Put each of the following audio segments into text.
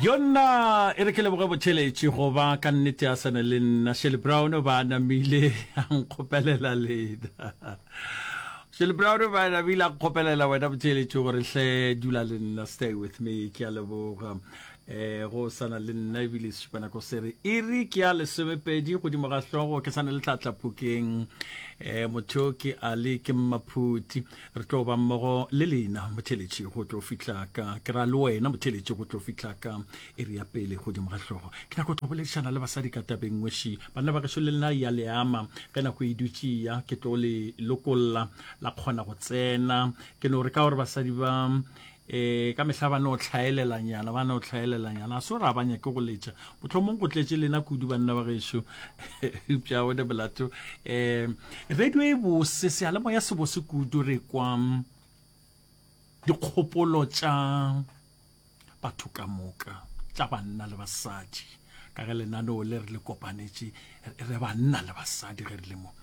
yona e re ke leboge botšheletše go ba ka nnete a sane le nna shele brown ba namile a nkgopelela lena shele brown ba namile a nkgopelela wena botšheletše gore hle dula le nna stay with me ke a leboga eh go sana le nna ebile sešupana ko sere e re ke ya lesomepedi godimo ga hlogo ke sane le tlatlaphokeng um motho ke ale ke mmaphuti Re tlo ba mmogo le lena, motheletši, go tlo fihla ka, ke ra le wena, motheletši, go tlo fihla ka iri ya pele godimo ga hlogo. Ke nyaka go tlo boledišana le basadi ka tabeng ngweši. Banna ba gešo le lena ya le ama, ge nako e dutše ya, ke tlo le lokolla, la kgona go tsena. Ke no re ka gore basadi ba E, ka mehla ba no hlaelelanyana, ba no hlaelelanyana. A so ra ba nyake go letša. Mohlomong go tletše lena kudu banna ba gešo. Eupša o ne molato. E, radio e bose, sealemoya se bose kudu re kwa dikgopolo tša batho ka moka, tša banna le basadi. Ka ge lenaneo le re le kopanetše re banna le basadi ge re le mo.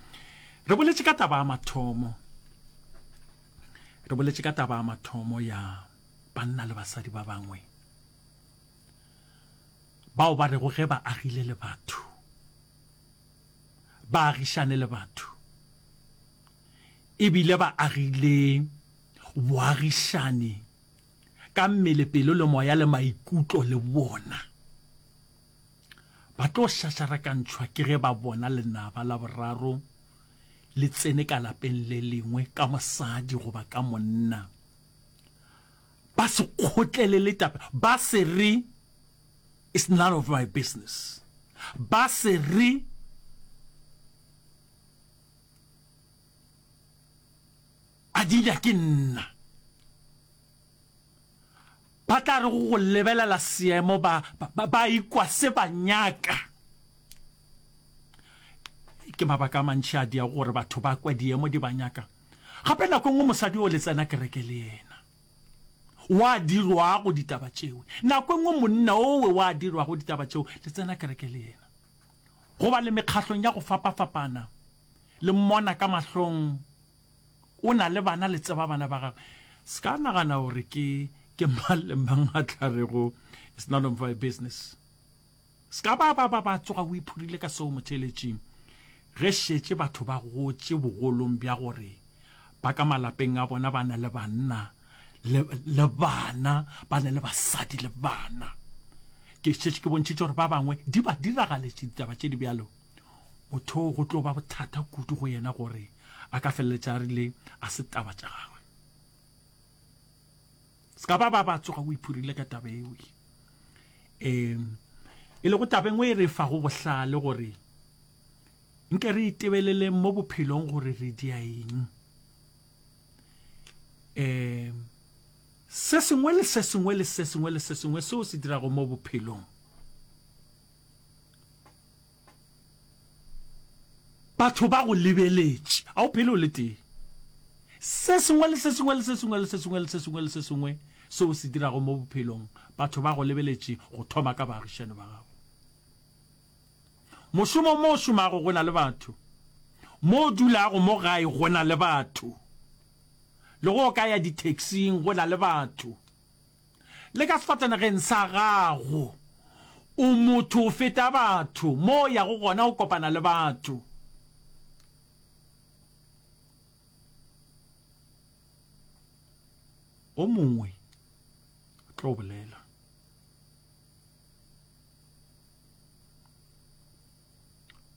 Re boletše ka taba ya mathomo. Re boletše ka taba ya mathomo ya banna le basadi ba bangwe bao ba rego ge ba agile le batho ba agišane le batho ebile ba agile boagišane ka mmele pelo le moya le maikutlo le bona Ba tlo šašarakantšhwa ke ge ba bona lenaba la boraro le tsene ka lapeng le lengwe ka mosadi goba ka monna. Ba se kgotlelele taba, ba se re, It's none of my business. Ba se re, A dira ke nna. Ba tla re go lebelela seemo ba ba ikwa se ba nyaka. Ke mabaka a mantši a dia gore batho ba kwe diemo di ba nyaka. Gape nako nngwe mosadi o le tsena kereke le yena. Wa dirwa go ditaba tšeo. Nako nngwe monna owe wa dirwa go ditaba tšeo le tsena kereke le yena. Go ba le mekgahlong ya go fapa-fapana le mmona ka mahlong O na le bana, le tseba bana ba Gagwe. Seka nagana gore ke, ke mang le mang a tla rego, It's none of my business. Seka ba, ba, ba, ba tsoga o iphurile ka seo motheeletšing, ge šetše batho ba gotše bogolong bja gore ba ka malapeng a bona ba na le banna le, le bana, ba na le basadi le bana. Ke šetše ke bontšhitše gore ba bangwe di ba diragaletše ditaba tše di bjalo. motho go tlo ba bothata kudu go yena gore a ka feleletša a rile a se taba tša gagwe se ka ba ba ba tsoga o iphurile ka taba eo um e lego tabeng o e re fago bohlale gore nke re itebelele mo bophelong gore re dia eng um se sengwe le se sengwe le se sengwe le se sengwe seo se dirago mo bophelong Batho ba go lebeletše. A o phele o le tee. Se sengwe le se sengwe le se sengwe le se sengwe le se sengwe le se sengwe se o se dirago mo bophelong, batho ba go lebeletše, go thoma ka baagišani ba gago. Mošomong mo o šomago go na le batho, mo o dulago mo gae go na le batho, le ge o ka ya di-taxing go na le batho. Le ka sefatanageng sa gago, o motho go feta batho. Mo o yago gona, o kopana le batho. O mongwe o tlo bolela.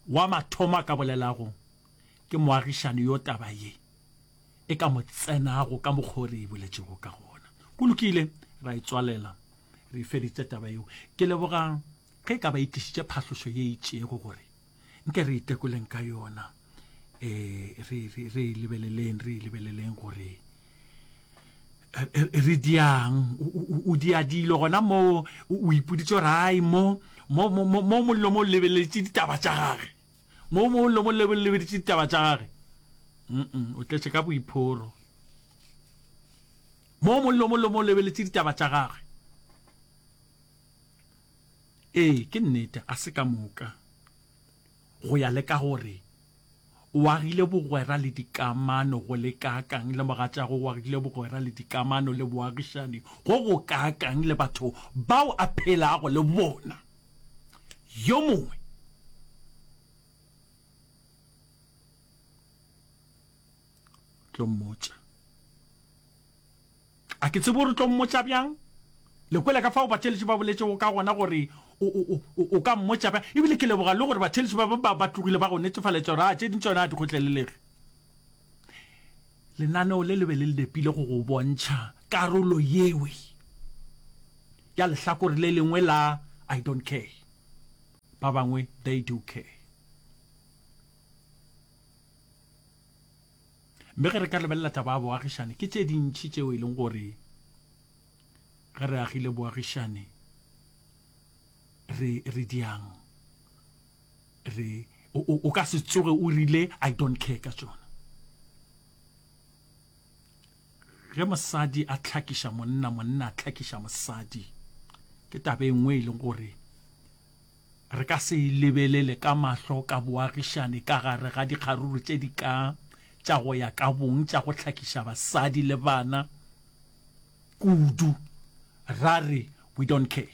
Wa mathomo a ka bolelago ke moagišani yo taba ye e ka mo tsenago ka mokgwa o re e boletšego ka gona. Go lokile, ra e tswalela, re e feditše taba yeo. Ke leboga ge e ka ba e tlišitše phahlošo ye e itšego gore nke re itekoleng ka yona, ee, re, re, re e lebeleleng, re e lebeleleng gore re diang o dia dilo gona mo o ipoditse rai mo mo mo mo mollo mo lebeletse ditaba tša gage mo mo mollo mo lebeletse ditaba tša gage mm o tletse ka boiphoro mo mollo mo mo lebeletse ditaba tša gage ee ke nnete a se ka moka Go ya le ka gore o agile bogwera le dikamano go le kaakang le mogatšago, o agile bogwera le dikamano le boagišani go go kaakang le batho bao a phelago le bona, yo mongwe tlo mmotša. A ke tsebe o re tlo mmotša bjang. Le kwele ka fao batheeletši ba boletšego ka gona gore o, o, o, o ka mmotša bjang. Ebile ke leboga le gore batheeletši ba, ba, ba tlogile ba go netefaletša gore a tše ding tšona a di kgotlelelege. Lenaneo le le be le le nepile go go bontšha karolo yewe ya lehlakore le lengwe la I don't care. Ba bangwe they do care. mme ge re ka lebelela taba ya boagišane ke tše dintšhi tšeo e leng gore ge re agile boagišane re re diang re o ka se tsoge o rile i don't care ka tsona Ge mosadi a hlakiša monna, monna a hlakiša mosadi, ke taba e nngwe e leng gore re ka se e lebelele ka mahlo ka boagišane ka gare ga dikgaruru tše di ka tša go ya ka bong tša go hlakiša basadi le bana kudu ra re we don't care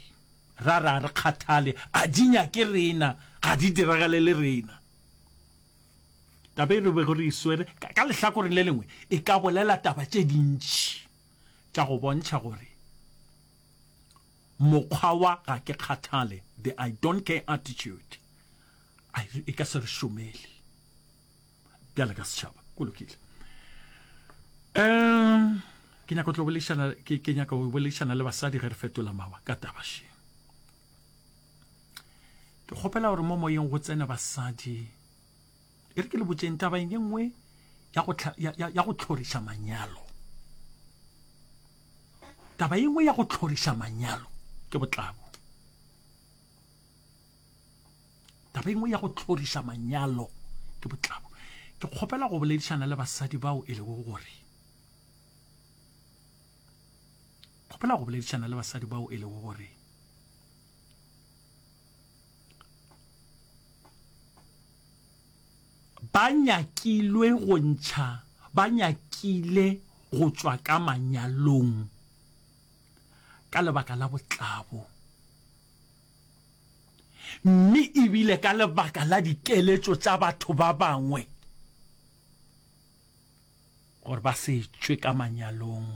ra re a re kgathale a di nyake rena ga di diragale le rena Taba e re bego re e swere ka lehlakoreng le lengwe e ka bolela taba tše dintši tša go bontšha gore mokgwa wa ga ke kgathale, the I don't care attitude, e ka se re šomele bjale ka setšhaba. Go lokile. Um ke nyaka go tlo boledišana ke nyaka go boledišana le basadi ge re fetola mawa ka taba she. ke kgopela gore mo moyeng go tsene basadi e re ke le botseng taba ye nngwe ya go tlhoriša manyalo taba ye nngwe ya go tlhoriša manyalo ke botlabo taba engwe ya go tlhorisa manyalo ke botlabo ke kgopela go boledišana le basadi bao e lego gore kgopela go boledišana le basadi bao e lego gore ba nyakilwe go ntšha ba nyakile go tšwa ka manyalong ka lebaka la botlabo mme ebile ka lebaka la dikeletšo tša batho ba bangwe gore ba se tšwe ka manyalong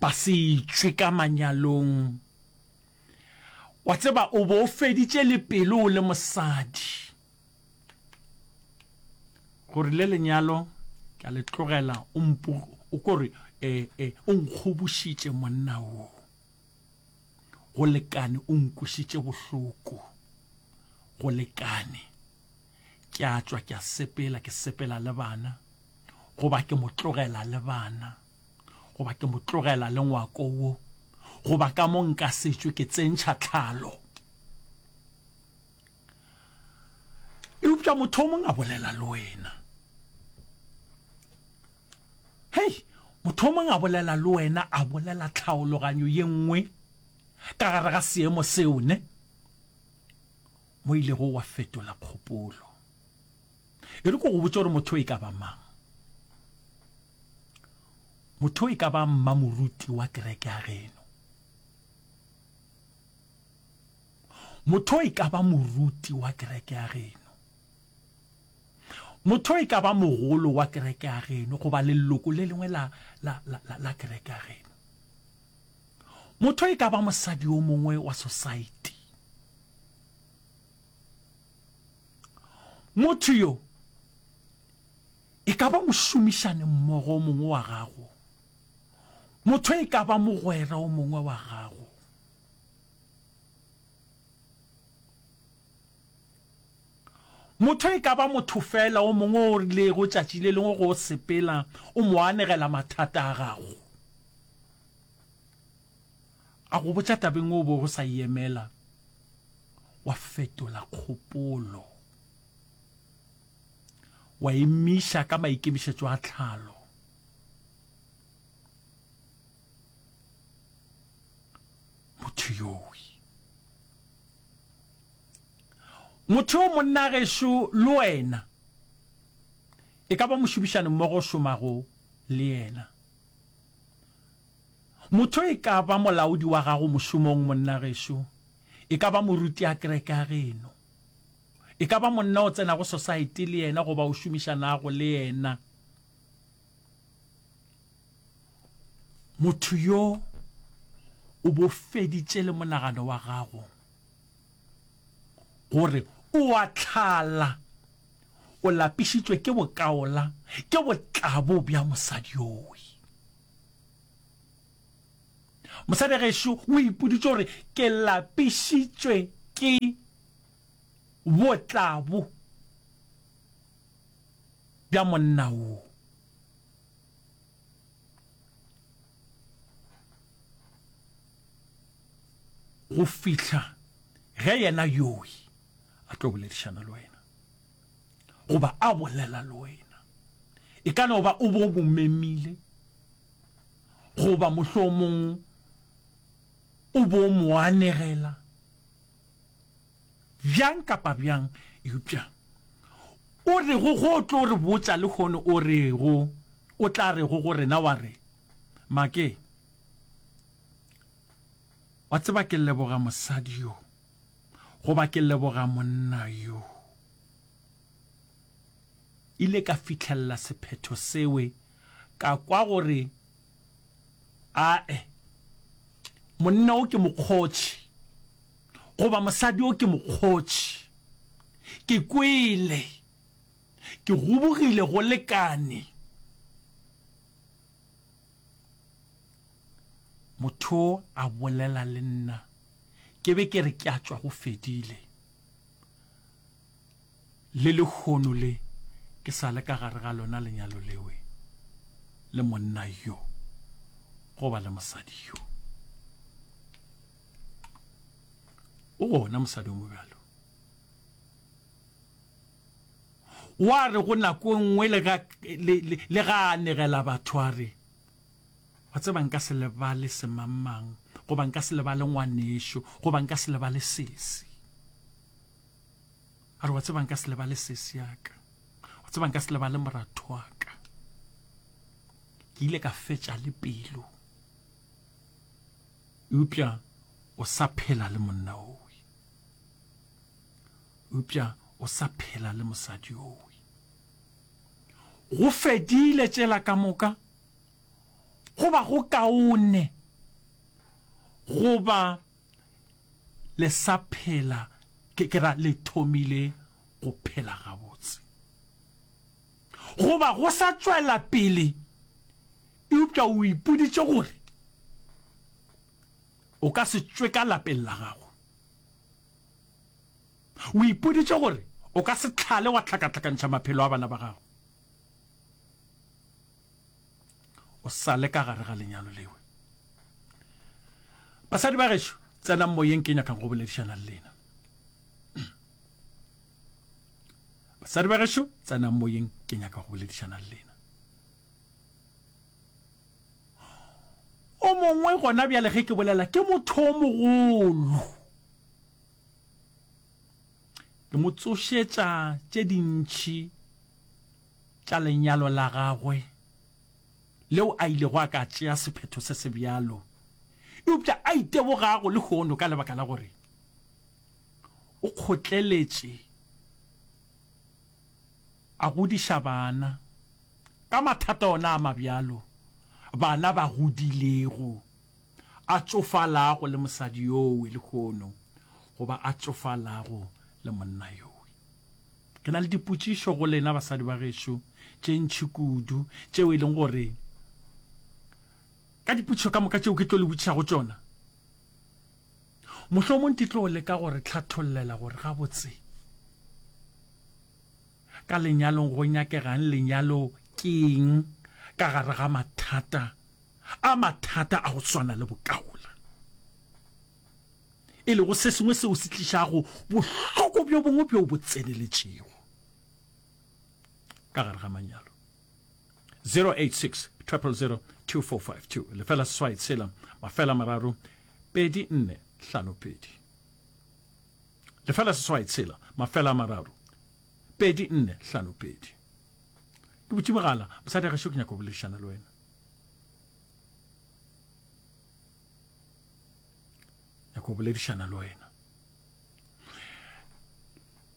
ba se tšwe ka manyalong wa tseba o bo feditše le pelo o le mosadi gore le lenyalo ka le tlogela o mpu o kore eh, eh, o nkgobošitše monna wo go lekane o nkwišitše bohloko go lekane Ke a tšwa ke a sepela, ke sepela le bana, goba ke mo tlogela le bana, goba ke mo tlogela le ngwako wo, goba ka mo nka setšwe ke tsentšha tlhalo. Eupša motho o mongwe a bolela le wena. Hei, motho o mongwe a bolela le wena, a bolela tlhaologanyo ye nngwe ka gare ga seemo seo, ne? mo o ilego wa fetola kgopolo. E re ko go botša gore motho e ka ba mang. Motho e ka ba mmamoruti wa kereke ya geno. Motho e ka ba moruti wa kereke ya geno. Motho e ka ba mogolo wa kereke ya geno goba leloko le lengwe la, la, la, la, la kereke ya geno. Motho e ka ba mosadi o mongwe wa sosaete. Motho yo e ka ba mošomišani mmogo o mongwe wa gago. Motho e ka ba mogwera o mongwe wa gago. Motho e ka ba motho feela o mongwe o rilego tšatši le lengwe go sepela o mo anegela mathata a gago, a go botša tabeng o bego o sa e emela, wa fetola kgopolo, wa emiša ka maikemišetšo a tlhalo. motho yowi motho yo monna gešo le wena e ka ba mošomišane mmogo šomago le yena motho e ka ba molaodi wa gago mošomong monna gešo e ka ba moruti a kereke ya geno e ka ba monna o tsenago society le yena goba o šomišanago le yena Motho yo o bo feditše le monagano wa gago gore o a tlhala, o lapišitšwe ke bokaola, ke botlabo bja mosadi yowi. Mosadi gešo o ipoditše gore ke lapišitšwe ke botlabo bja monna wo. go fihla ge yena yoi a tlo boledišana le wena goba a bolela le wena e ka no ba o bo mo memile goba mohlomong o bo mo anegela Bjang kapa bjang, eupša O rego go tlo re botša lehono O rego O tla rego go rena wa re, Makee, wa tseba ke leboga mosadi yo, goba ke leboga monna yo. Ile ka fihlelela sephetho sewe ka kwa gore, Ae, monna wo ke mokgotši. goba mosadi yo ke mokgotši. Ke kwele. Ke gobogile go lekane. Motho yo a bolela le nna. Ke be ke re ke a tšwa go fedile. Le lehono le ke sa le ka gare ga lona lenyalo lewe le monna yo goba le mosadi yo. o gona mosadi o mobjalo wa re go nako e nngwe le ga a negela batho a re wa tseba nka se lebale semangmang goba nka se lebale ngwanešo goba nka se lebale sesi a re wa tseba nka se lebale sesi yaka wa tseba nka se lebale moratho wa ka ke ile ka fetša le pelo Eupša o sa phela le monna owe. Eupša o sa phela le mosadi owe. Go fedile tšela ka moka, go ba go kaone go ba le sa phela, ke, ke ra le thomile go phela gabotse. Go ba go sa tšwela pele Eupša o ipoditše gore o ka se tšwe ka lapeng la gago. O ipoditše gore o ka se hlale wa hlakahlakantšha maphelo a bana ba gago o sa le ka gare ga lenyalo lewe. Basadi ba gešo, tsenang moyeng, ke nyaka go boledišana le lena. Basadi ba gešo, tsenang moyeng, ke nyaka go boledišana le lena. O mongwe gona bjale, ge ke bolela, ke motho o mogolo. Ke mo tsošetša tše dintši tša lenyalo la gagwe leo a ilego a ka tšea sephetho se se bjalo, eupša a itebogago lehono ka lebaka la gore o kgotleletše a godiša bana. Ka mathata ona a mabjalo, bana ba godilego, a tšofalago le mosadi yowe lehono goba a tšofalago le monna yowe. Ke na le dipotšišo go lena basadi ba gešo tše ntši kudu tšeo e leng gore ka dipotšišo ka moka tšeo ke tlo le botšišago tšona, mohlomong di tlo leka go re hlathollela gore gabotse Ka lenyalong go nyakega'ng? Lenyalo ke eng ka gare ga mathata a mathata a go swana le bokaula, e lego se sengwe seo se tlišago bohloko bjo bongwe bjo bo tseneletšego ka gare ga manyalo? 086 000 2452 lefela seswai tshela mafela mararo pedi nne hlano pedi Lefela seswai tshela mafela a mararo pedi nne hlano pedi. Ke butše mogala, mosadi a gešo ke nyaka go boledišana le wena. Nyaka go boledišana le wena.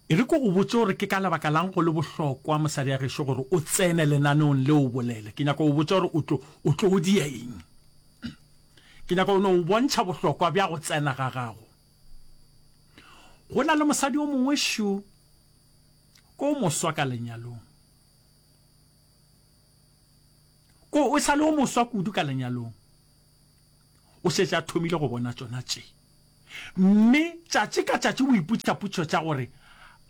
E re ko go botse gore ke ka lebaka lang go le bohlokwa mosadi a gešo gore o tsene lenaneong le o bolele. Ke nyaka go botse gore o tlo o tlo o dia eng. Ke nyaka go no o bontšha bohlokwa bja go tsena ga gago. Go na le mosadi o mongwe šo o moswa ka lenyalong. O, o sa le o moswa kudu ka lenyalong. O šetše a thomile go bona tšona tše. Mme tšatši ka tšatši o ipotšiša potšišo tša gore,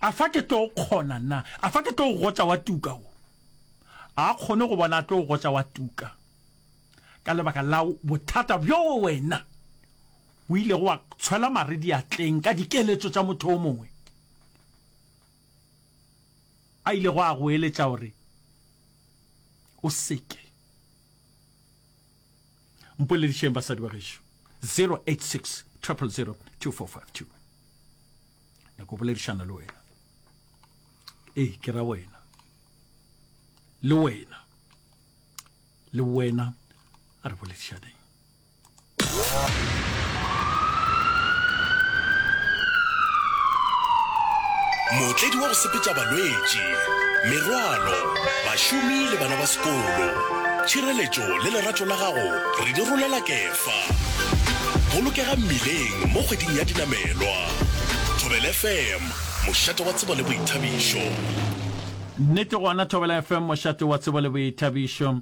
A fa ke tlo kgona na? A fa ke tlo gotša wa tuka wo? A kgone go bona a tlo gotša wa tuka ka lebaka la bothata bjo wena O ilego wa tshwela mare diatleng ka dikeletšo tša motho yo mongwe a ilego a go eletša gore o se ke? Mpoledišeng basadi ba gešo. 086 000 2452 nyako boledišana le wena ee ke ra wena le wena le wena a re boledišaneng Mootledi wa go sepetša balwetši, merwalo, bašomi le bana ba sekolo. Tšhireletšo le lerato la gago re di rolela Kefa. Bolokega mmileng mo kgweding ya dinamelwa. Thobela FM, mošate wa tsebo le boithabišo. Nnete gona Thobela FM, mošate wa tsebo le boithabišo.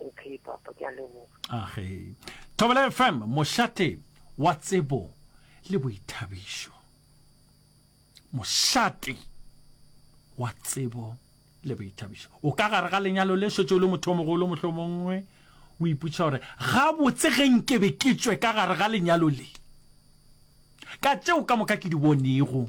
Okay papa ke a leboga. Age. Thobela FM mošate wa tsebo le boithabišo. Mošate wa tsebo le boithabišo. O ka gare ga lenyalo le šetše o le motho o mogolo mohlomongwe o iputša gore gabotse ge nke be ke tšwe ka gare ga lenyalo le ka tšeo ka moka ke di bonego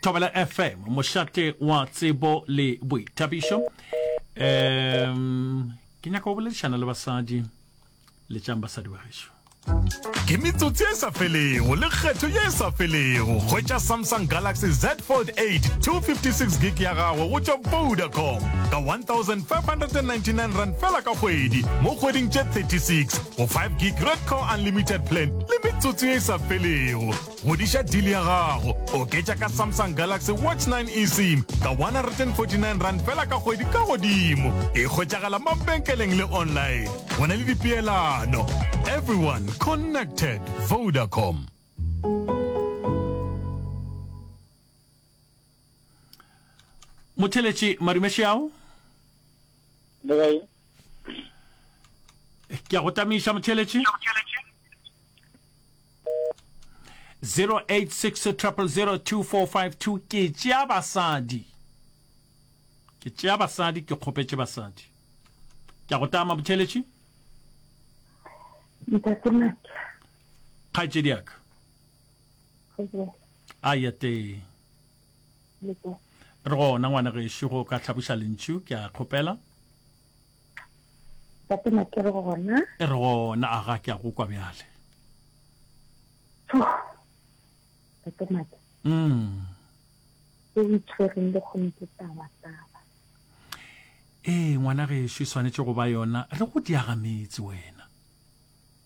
thobela fm mošate wa tsebo le boithabišo um ke nyaka go boledišana le basadi le tšang basadi ba gešo ke metsotsi e sa felego le kgetho ye e sa felego hwetša samsung galaxy z fold 8 256 gig ya gagwe go tšwa vodacom ka 1599 rand fela ka kgwedi mo kgweding tše 36 go 5 gig red core unlimited plan le metsotso e sa felego godiša deal ya gago oketša ka samsung galaxy watch 9 esim ka 149 rand fela ka kgwedi ka godimo e kgwetšagala mabenkeleng le online go na le dipeelano everyone connected vodacom motheletši madume šeao ke a go tamiša motheletši 0860002452 ke tšea basadi ke tšea basadi ke kgopetše basadi ke a go tama motheletši kgaetšediaka a ya tee re gona ngwana gešo go ka hlaboša lentšu ke a kgopela tatema ke re gona e re gona a ga ke a go kwa bjale tatema ke mm o itshwereng le kgone ke taba taba ee ngwana gešo e swanetše go ba yona re go diagametse wena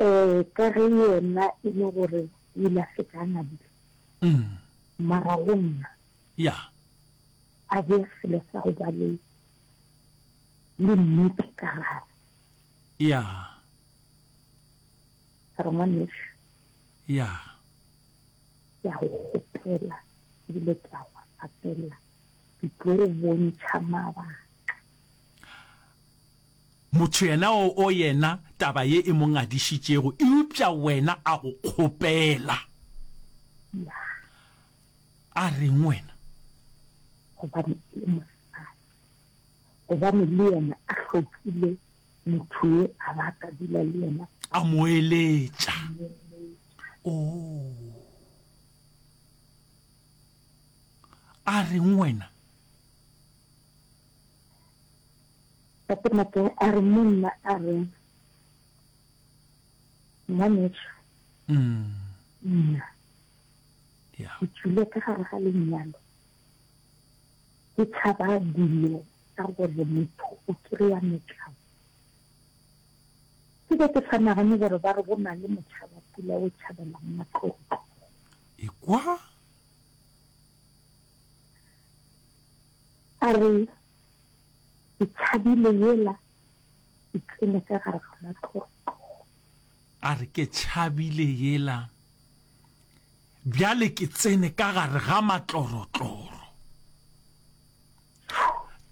Ee, ka ge yena e le gore o ile a fetša a ngwadile, mara go nna a bea selo sa go ba le le nnete ka gare. Re ngwanešu, ke a go kgopela ebile ke a go rapela, ke tlo go bontšha mabaka. Motho yena o o yena taba ye e mo ngadišitšego, eupša wena a go kgopela. A reng wena? Gobane e le mosadi. Gobane le yena a hlokile motho yo a ba a ka dula le yena. A mo eletša. Oo. A reng wena? Gape-gape a re monna a re, Ngwanešu, nna ke tšwile ka gare ga lenyalo, ke tšhaba dilo tsa gore motho o kry-a metlao. Ke be ke sa nagane gore ba re go na le motšhabapula o tšhabelang matlotlo. Ekwa. A re Ke tšhabile yela e tsene ka gare ga matloro. A re, Ke tšhabile yela bjale ke tsene ka gare ga matlorotloro.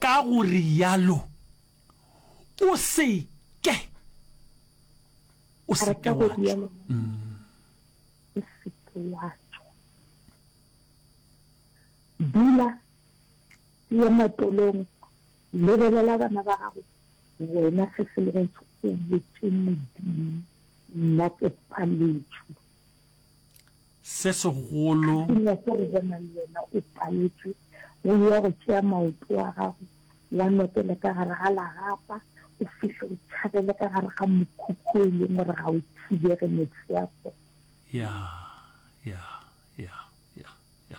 Ka go rialo o se ke o se ke wa tšwa. O se ke wa tšwa. Dula. Ye matolong, lebelela bana ba gago wena se se lego go botše Modimo, nna ke paletšwe. Se segolo. Sengwe se go bona le wena o paletšwe, go ya go tšea maoto a gago, wa nokele ka gare ga lagapa, o fihle o tšhabele ka gare ga mokhukhu o e leng gore ga o thibege mefefo. Ya, ya, ya, ya, ya.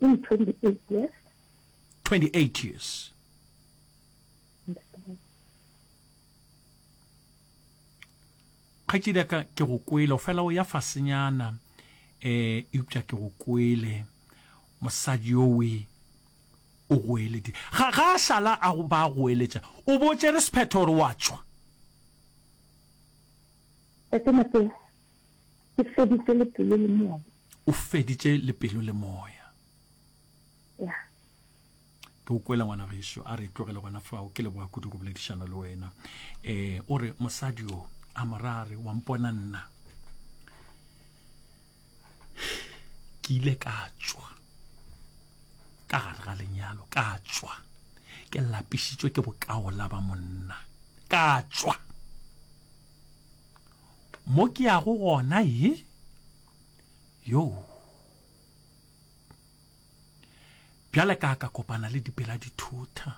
Ke di 28 years. 28 years. kgaetšedi ya ka ke go kwele fela o ya fasenyana um eh, eupša ke go kwele mosadi yowe o goeledi ga ga a šala a ba a goeletša o botše re sephetho gore wa tšwa Ke feditše le pelo le moya. O feditše le pelo le moya. Ya. ke o kwela ngwana gešo a re tlogele gona fao ke leboga kudu go boledišana le wena um o re mosadi o a morare wa mpona nna ke ile ka tswa ka gare ga lenyalo ka tswa ke lapišitswe ke bokaola ba monna ka tswa Mo ke yago gona ye? Yoo. Bjale ka ka kopana le dipela dithutha.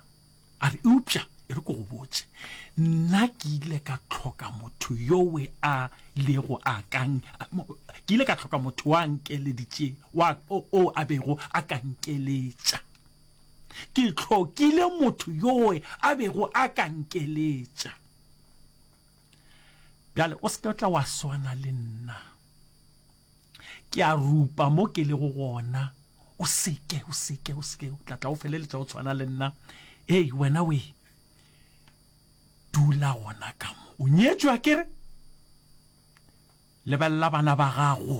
A re, Eupša, e re ke go botše, nna ke ile ka tlhoka motho yowe a lego a kang, ke ile ka tlhoka motho wa nkeleditše, wa o, o a bego a ka nkeletša. Ke tlhokile motho yowe a bego a ka nkeletša. Bjale, o se ke tla wa swana le nna. Ke a rupa mo ke lego gona. O se ke, o se ke, o se ke. O tla tla o feleletša o tshwana le nna. Hei, wena we. Dula gona ka mo. O nyetšwa kere? Lebelela bana ba gago.